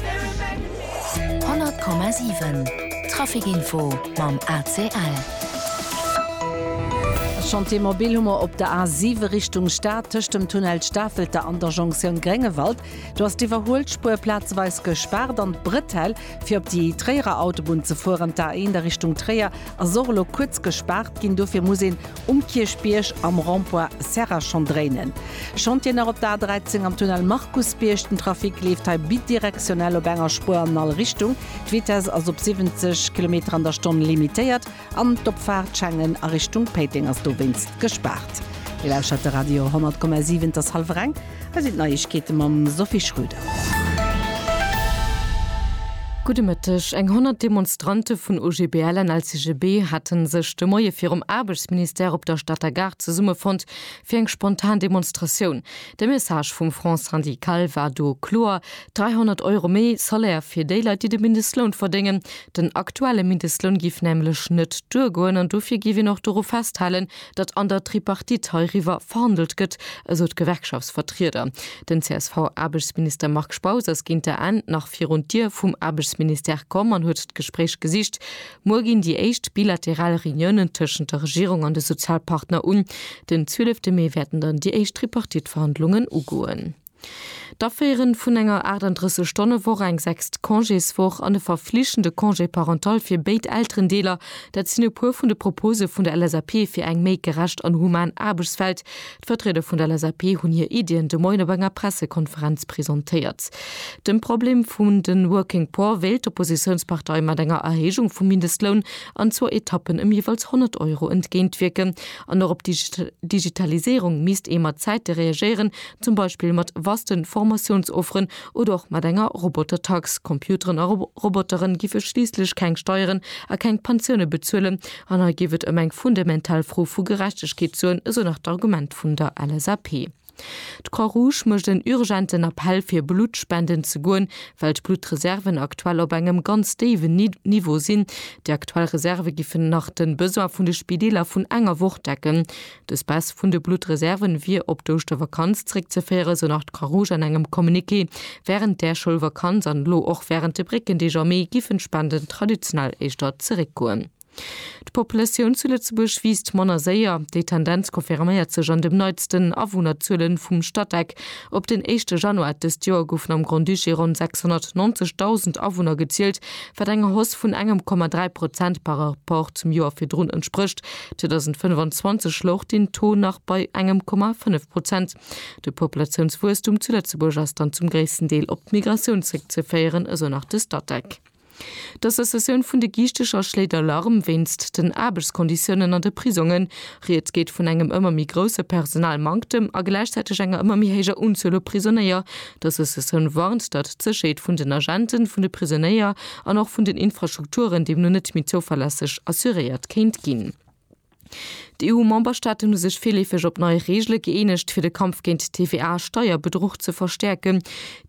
100,7 Traficinfo mam ACL. E Chantier mobil hu mer op der A 7 Richtung Stad, tëscht dem Tunnel Stafelter an der Jonktioun Gréngewald. Do ass d'Iwwerhuelspuer plazeweis gespaart an d'Bretell, fir op déi Tréierer Autobunn ze fueren, d'A 1 a Richtung Tréier, ass och elo kuerz gespaart ginn. Dofir muss een Um Kierchbierg am Rond-point Serra schonn dréinen Chantieren nach op der A 13 am Tunnel Markusbierg. Den Trafic leeft hei bidirektionell op enger Spuer an all Richtung. D'Vitess ass op 70 Kilometer an der Stonn limitéiert an d'Opfaart Schengen a Richtung Péiteng ass dowéinst gespaart. Dir lauschert de Radio 100,7, et ass hallwer eng. Hei sinn d'Neiegkeete mam Sophie Schröder. Gudde Mëtteg. Eng 100 Demonstrante vun OGBL an LCGB hate sech de Moie virum Aarbechtsministère op der Stater Gare zesummefonnt fir eng spontan Demonstratioun. De Message vum Front syndical war do kloer, 300 Euro méi Salaire fir déi Leit, déi de Mindestloun verdéngen. Den aktuelle Mindestloun géif nämlech net duergoen an dofir géif een och doru festhalen, datt an der Tripartite heiriwwer verhandelt gëtt, esou d'Gewerkschaftsvertrieder. Den CSV-Aarbechtsminister Marc Spautz ass géint der Enn nach virun d'Dier vum Aarbechtsministère komm an huet d'Gespréich gesicht. Muer ginn déi éischt bilateral Reuniounen tëschent der Regierung an de Sozialpartner un. Den 12 Mee wäerten dann déi éischt Tripartite-Verhandlungen ugoen. D'Aféiere vun enger 38 Stonne Woch, eng sechst Congéswoch an e verflichtende Congé parental fir béid Elterendeeler, dat sinn e puer vun de Propose vun der LSAP fir eng méi gerecht an human Aarbechtswelt. D'Vertrieder vun der LSAP hunn hir Iddien de Moien op enger Pressekonferenz presentéiert. Dem Problem vun de Working Poor wéilt d'Oppositiounspartei mat enger Erhéijung vum Mindestloun an zwou Etappen ëm jeeweils 100 Euro entgéintwierken. An och op d'Digitaliséierung misst ee mat Zäite reagéieren, zum Beispill mat vasten Formatiounsofferen oder och mat enger Robotertax. Computeren a Roboteren giff e schliisslech keng Steieren a keng Pensioune bezuelen an hei géif et ëm eng fundamental Fro vu Gerechtegkeet soen, esou nach d'Argument vun der LSAP. D'Croix-Rouge mécht en urgenten Appell fir Blutt spenden ze goen, well d'Bluttreserven aktuell op engem ganz déiwen Niveau sinn. Déi aktuell Reserve giffen nach de Besoin vun de Spideeler vun enger Woch decken. Dës Baisse vun de Bluttreserven wier op d'Ouschtervakanz zréckzeféieren, esou nach d'Croix Rouge an engem Communiqué. Wärend där Schoulvakanz an elo och wärend de Bréckendeeg am Mee giffen d'Spenden traditionell éischter zeréckgoen. D'Populatioun zu Lëtzebuerg wiisst manner séier. Déi Tendenz confirméiert sech an dem neitsten Awunnerzuele vum Statec. Op den éischte Januar dëst Joer goufen am Grand-Duché ronn 690.000 Awunner gezielt, wat enger Hausse vun engem Komma dräi Prozent par Rapport zum Joer virdrun entsprécht, 2025 louch den Taux nach bei engem Komma 5 Prozent. De Populatiounswuesstum zu Lëtzebuerg ass dann zum gréissten Deel op d'Migratioun zréckzeféieren, esou nach de Statec. D'Associatioun vun de Giichteger schléit Alarm wéinst den Aarbechtskonditiounen an de Prisongen. Rieds geet vun engem ëmmer méi grousse Personalmanktem a gläichzäiteg enger ëmmer méi héijer Unzuel u Prisonéier, D'Associatioun warnt, datt d'Sécherheet vun den Agenten, vun de Prisonéier an och vun den Infrastrukturen deemno net méi zouverlässeg assuréiert kéint ginn. D'EU-Memberstaaten hu sech virleefeg op nei Reegele gëeenegt, fir de Kampf géint TVA-Steierbedruch ze verstäerken.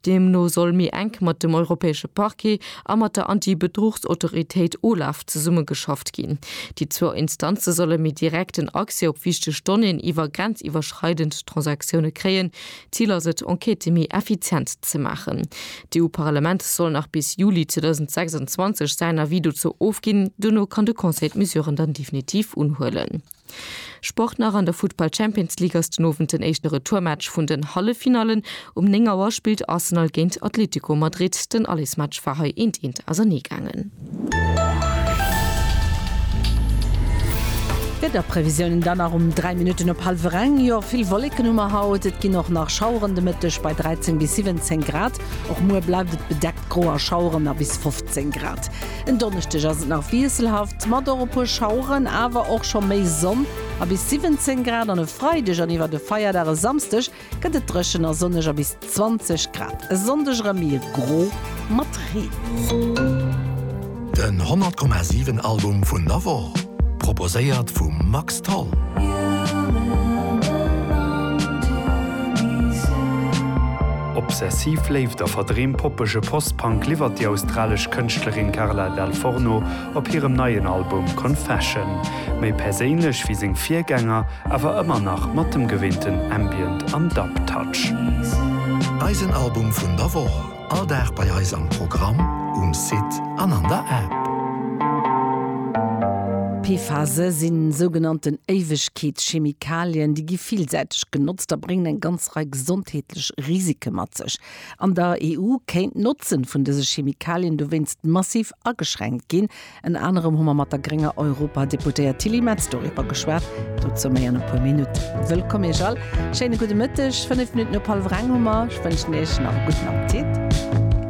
Deemno soll méi enk mat dem europäesche Parquet a mat der Anti-Bedruchsautoritéit OLAF zesummegeschafft ginn. Déi zwou Instanze solle méi direkten Accès op wichteg Donnéeën iwwer grenziwwerschreidend Transaktioune kréien, D'Zil ass et, Enquêtë méi effizient ze maachen. D'EU-Parlament soll nach bis Juli 2026 säin Avis dozou ofginn. Dono kann de Conseil d'Mesuren dann definitiv unhuelen. Sport nach An der Futtball Champions League ass den Owend den éischte Retourmatch vun den Halleffinallen. Um 9 Auer spillt Arsenal géint Atlético Madrid. Den Allesmatch war hei eent eent ausernee gaangen. D'Wiederprevisiounen dann nach um 3 Minutten op hallwer eng. Jo, vill Wolleken hu mer haut. Et ginn och nach Schaueren de Mëtteg bei 13 bis 17 Grad. Och muer bleift et bedeckt, gro a Schaueren a bis 15 Grad. En Donneschdeg ass et nach wiesselhaft mat och e puer Schaueren, awer och scho méi Sonn a bis 17 Grad. An e Freideg an iwwer de Feierdag e Samsdeg gëtt et dréchen a sonneg a bis 20 Grad. E Sonndeg erëm méi gro mat Reen. Den 100,7 Album vun der Woch, proposéiert vum Max Tholl. Obsessiv Léift a verdreem poppege Post-Punk liwwert déi australesch Kënschtlerin Carla Dal Forno op hirem neien Album Confession. méi perséinlech wéi seng Virgänger, awer ëmmer nach mat dem gewinnten Ambient an Dub Touch. Eisen Album vun der Woch, all Dag bei eis am Programm, um Site an an der App. PFASe sinn sougenannten Éiwegkeetschemikalien. Déi gi villsäiteg genotzt a bréngen eng ganz Rei gesondheetlech Risike mat sech. An der EU kéint d'Notzen vun dëse Chemikalien dowéinst massiv ageschränkt ginn, Ënner anerem hu mer mat der grénger Europadeputéiert Tilly Metz doriwwer geschwat. Dozou méi an e puer Minutten. Wëllkomm Iech all. Schéine gudde Mëtteg. Fënnef Minutten op hallef reng hu mer. Ech wënschen Iech nach e gudden Appetit.